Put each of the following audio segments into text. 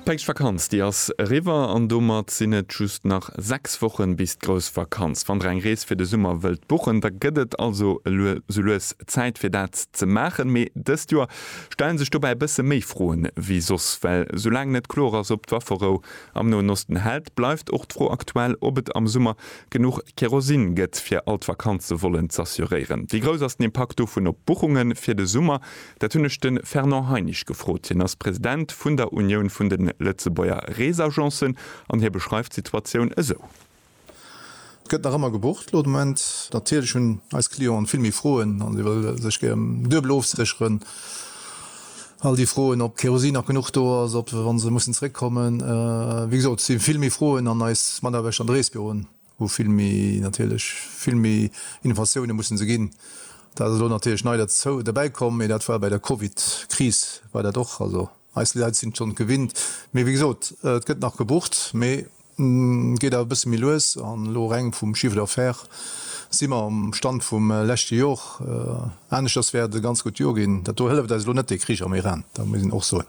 D'Päischtvakanz, déi ass eriwwer an domat sinn et just nach 6 Wochen bis d'grouss Vakanz. Wann der eng Rees fir de Summer wëllt buchen, da gëtt et also elo sou lues Zäit fir dat ze maachen. Mee dëst Joer stellen sech dobäi e bësse méi Froen wéi soss. Well sou laang net kloer ass, ob d'Wafferou am Noen Osten hält, bleift och d'Fro aktuell, ob et am Summer genuch Kerosin gëtt, fir all d'Vakanze wollen z'assuréieren. Wéi grouss ass den Impakt dovun op d'Buchunge fir de Summer? Dat hunn ech de Fernand Heinisch gefrot. Hien ass President vun der Unioun vun de Lëtzebuerger Reesagencen an hie beschreift d'Situatioun esou. Et gëtt nach ëmmer gebucht elo de Moment. Natierlech hunn eis Clienten vill méi Froen an si wëlle sech gär duebel ofsécheren. All déi Froen, ob Kerosin nach genuch do ass, ob, wa se mussen zeréckkommen. Wéi gesot, et si vill méi Froen an eis Mataarbechter an de Reesbüroen. Wou vill méi, natierlech vill méi Innovatioune mussen se ginn. Dat ass elo natierlech nei derzou, derbäi komm, mee dat war bei der Covid-Kris war dat och. Also eis Leit sinn et schonn gewinnt. Mee wéi gesot, et gëtt nach gebucht, mee geet awer e bësse méi lues. An elo reng vum Chiffre d'affaires si mer um Stand vum leschte Jor. Aneschters wäert et e ganz gutt Jor ginn. Dat do hëlleft eis elo net dee Krich am Iran, dat muss een och soen.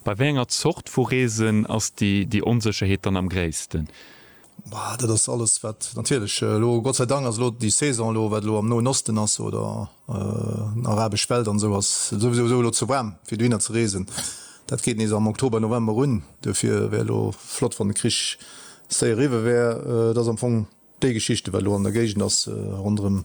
Bei wéi enger Zort vu Reesen ass déi Onsécherheet dann am gréissten? Bah, dat ass alles, wat natierlech elo, Gott sei Dank ass elo déi Saison elo, wat elo am Noen Osten ass oder arabesch Welt an esou, ass souwisou esou elo ze waarm, fir dohinner ze reesen. Dat geet nees am Oktober, November un. Duerfir wär elo flott, wann de Krich séier eriwwe wär. Et ass am Fong Déi Geschichte wat elo an der Géigend ass ronderëm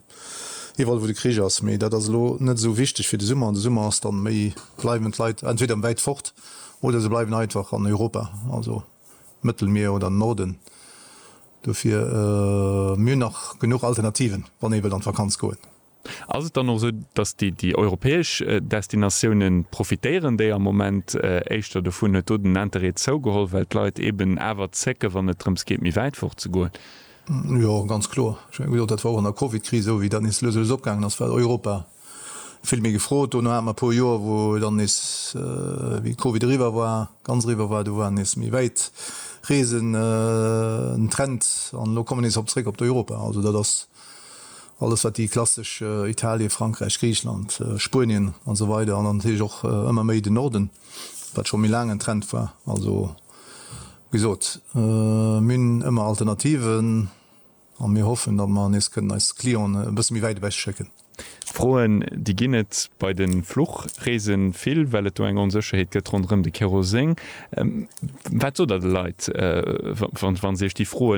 iwwerall wou de Krich ass, mee dat ass elo net esou wichteg fir de Summer. An de Summer ass dann méi, bleiwen d'Leit entweder wäit fort oder se bleiwen einfach an Europa, also Mëttelmier oder Norden. Dofir, mir hunn nach genuch Alternativen, wann ee wëllt an d'Vakanz goen. Ass et dann och esou, datt déi europäesch Destinatioune profitéieren, déi am Moment éischter dovun, huet do den Interêt zougeholl, well d'Leit eben awer zécken, wann et drëms geet, méi wäit fort ze goen? Jo, ganz kloer. Ech menge, wéi gesot, dat war och an der Covid-Kris esou, wéi dat nees lues a lues opgaangen ass, war Europa vill méi gefrot. Dono hate mer e puer Joer, wou dann nees, wéi d'Covid eriwwer war, ganz eriwwer war, do war nees méi wäit Reesen en Trend an elo komme mir nees op zréck op d'Europa. Also dat ass Alles wat déi klassesch Italien, Frankräich, Griichland, Spuenien an esou weider an dann natierlech och ëmmer méi den Norden, wat scho méi laang en Trend war. Also wéi gesot, mir hunn ëmmer Alternativen a mir hoffen, datt mer nees kënnen eis Clientë e bësse méi wäit ewech schécken. Froen, déi ginn et bei de Fluchreese vill, well et do eng Onsécherheet gëtt ronderëm de Keroseng. Wat sot Der de Leit, wa se Iech déi Froe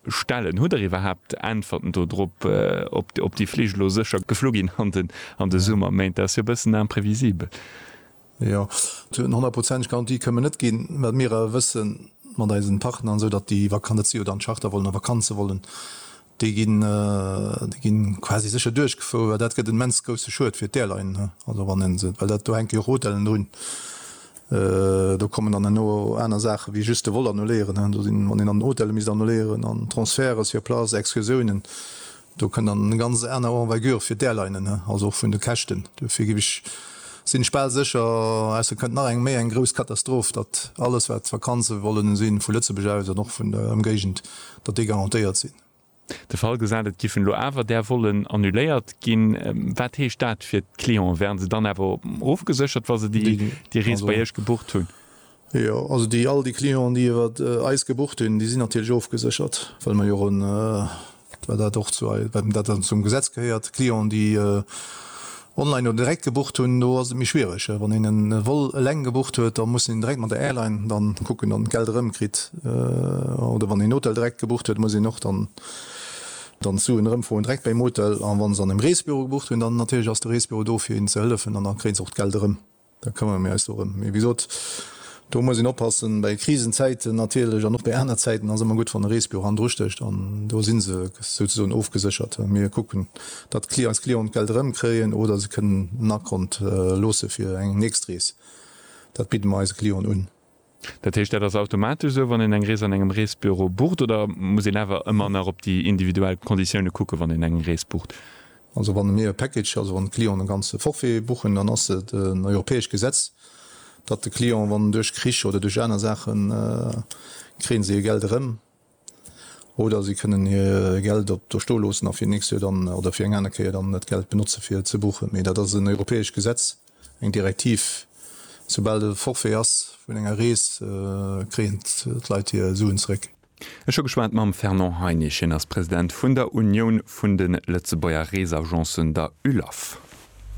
stellen? Hutt Der iwwerhaapt Äntwerten do drop, ob déi Flich elo sécher geflu ginn an de Summerméint? Dat ass jo e bëssen imprevisibel. Jo, esou eng honnertprozenteg Garantie kënnen mer net ginn, well mir awer wëssen, mat eisen Partner an esou, datt déi Vakanz, dat si jo dann Chartervolen a Vakanzevolen, Déi ginn quasi sécher duerchgefouer, well dat gëtt en immens grousse Schued fir d'Airline, also wann een se, well dat, do hänke jo Rotellen drun, do kommen dann herno aner Saache wéi just de Vol annuléieren, do sinn, wann een dann Hotele misst annuléieren an Transferte sur place, Excursiounen, do kënn dann eng ganz aner Envergure fir d'Airlinen, also och vun de Käschten. Duerfir géif ech, sinn ech bal sécher, ausser et kënnt nach eng méi eng grouss Katastroph, datt alles wat d'Vakanze wollen sinn, vu Lëtzebuerg aus an och vun der Ëmgéigend, datt déi garantéiert sinn. De Fall gesat, et giffen elo awer där Vollen annuléiert ginn. Wat heescht dat fir d'Clienten? Wären se dann awer ofgeséchert, wa se déi Rees bei Iech gebucht hunn? Jo, also déi all déi Clienten, déi iwwert eis gebucht hunn, déi sinn natierlech ofgeséchert, well mer jo och en, well dat och zu eis, well dat dann zum Gesetz gehéiert, Clienten, déi, Online oder direkt gebucht hunn, do ass et méi schwiereg. Wann een en Vol eleng gebucht huet, da muss een direkt mat der Airline dann kucken an d'Geld erëm kritt. Oder wann een en Hotel direkt gebucht huet, muss een och dann d'Suen erëmfroen direkt beim Hotel. A wann se an engem Reesbüro gebucht hunn, dann natierlech ass de Reesbüro do fir een ze hëllefen an da kréien se och d'Geld erëm. Da këmmere mir eis dorëm. Mee wéi gesot, do muss een oppassen. Bei Krisenzäiten natierlech an och bei aner Zäiten ass ëmmer gutt, wann e Reesbüro hannendru stécht. An do si se souzesoen ofgeséchert. Mir kucken, datt eis Clienten d'Geld erëmkréien oder se kënnen en Akont loosse fir eng nächst Rees. Dat bidde mer eise Clienten un. Dat heescht, dat ass automatesch esou, wann een eng Rees an engem Reesbüro bucht, oder muss een awer ëmmer nach op déi individuell Konditioune kucken, wann een eng Rees bucht? Also wann mir e Package, also wann de Client e ganze Forfait buchen, dann ass et en europäescht Gesetz, datt de Client, wann duerch Krich oder duerch aner Saachen, kréie si hir Geld erëm. Oder si kënnen hir Geld op do sto loossen a fir nächst Joer dann, oder fir eng aner Kéier dann dat Geld benotze fir ze buchen. Mee dat ass en europäescht Gesetz, eng Direktiv. Soubal e Forfait ass vun enger Rees, kréien d'Leit hir Suen zeréck. Ech hu geschwat mam Fernand Heinisch, hien ass President vun der Unioun vun de Lëtzebuerger Reesagencen, der ULAF.